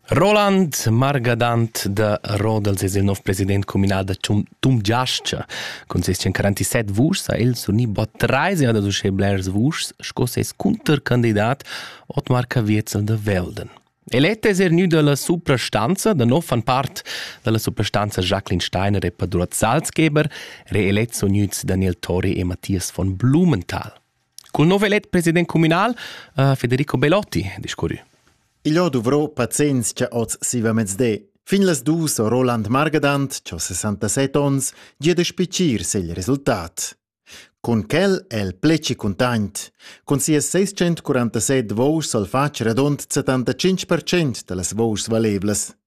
Roland Margadant da Rodels es il nov president communal da Tum Giascha. Con ses 47 vuschs ha el surni bod trais jada uschè blers vuschs sco ses cuntercandidat Otmar Caviezel da Velden. Elet es er gnü da la suprastanza, da nov fan part da la suprastanza Jacqueline Steiner e Padruat Salzgeber, reelets sun gnüts Daniel Tori e Matthias von Blumenthal. Cul nov elet president communal uh, Federico Belotti discurrü. Il ho dovrò pazienz cha oz siva mezde. Fin las dus ho Roland Margadant, cho 67 ons, gia da spicir segl resultat. Cun quel el pleci content. Cun sias 647 vouschs al fatg radont 75% da las vouschs valevlas.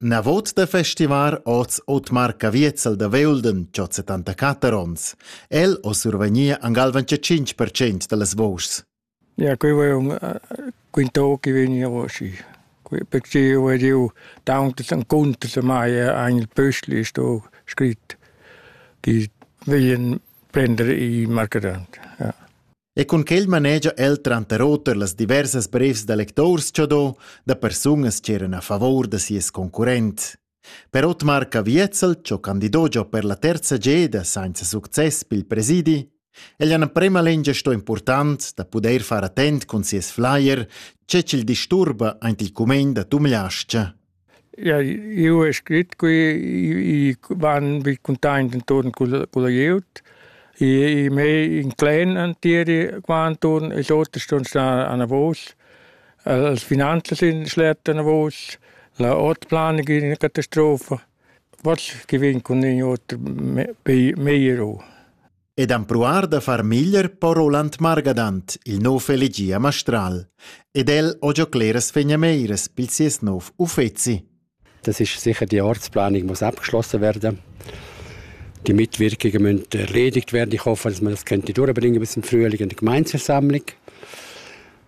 Navot da festivar oz Otmar Caviezel da Veulden cho 74 ons. El ho survegnia an galvan cha 5% da las vouschs. Ja, qui vai un quintò chi vegni osci. Perché eu ed eu tauntas incuntas mai ein il pöstli sto scrit chi vegn prender i marcadant. Ja. E cun quel manegia el tranter oter las diversas brevs da lectors cha do da persunas ch'eran a favor da sies concurrent. Per Otmar Caviezel, cho candido giò per la terza geda sainza success pel presidi, el ha prema lengia sto important da pudair far attent cun sies flyer, che ch'il disturba aint il cumegn da Tumliascha. Ja, eu he scrit qui, i van vi cuntaint inturn culla culla glieud. I i mei inclin entieri qua inturn, ils oters ston star anavos. Els finanzas in schlet anavos, la ortplanung in ina catastrofa. What's giving cun in oter me- bei- meglio. ed empruar da far meglier po Roland Margadant, il nov elegì a Mastral, ed el ho giò cleras fegnameires pel sies nov uffezi. Das ist sicher die Ortsplanung muss abgeschlossen werden. Die Mitwirkungen müssen erledigt werden. Ich hoffe, dass man das könnte durchbringen bis zum Frühling in der Gemeindeversammlung.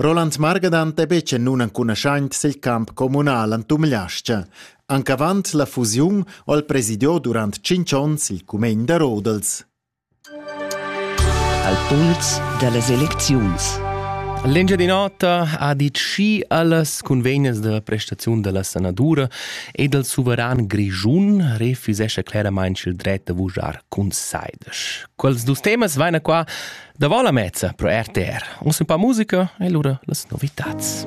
Roland Margadant è betg en nunencunaschant sil camp communal en Tumliascha. Anc avant la fusiun ho el presidiò durant tschintg onns il cumegn da Rodels. Al puls dallas elecziuns. L'Engia di nota ha dit schi allas convegnas da prestaziun della sanadura ed al suveran grischun refusescha claramente il dret da vujar cun saides. Quels dus temas vaina qua Davant la mezza pro RTR. Un se pa musica e lura las novitats.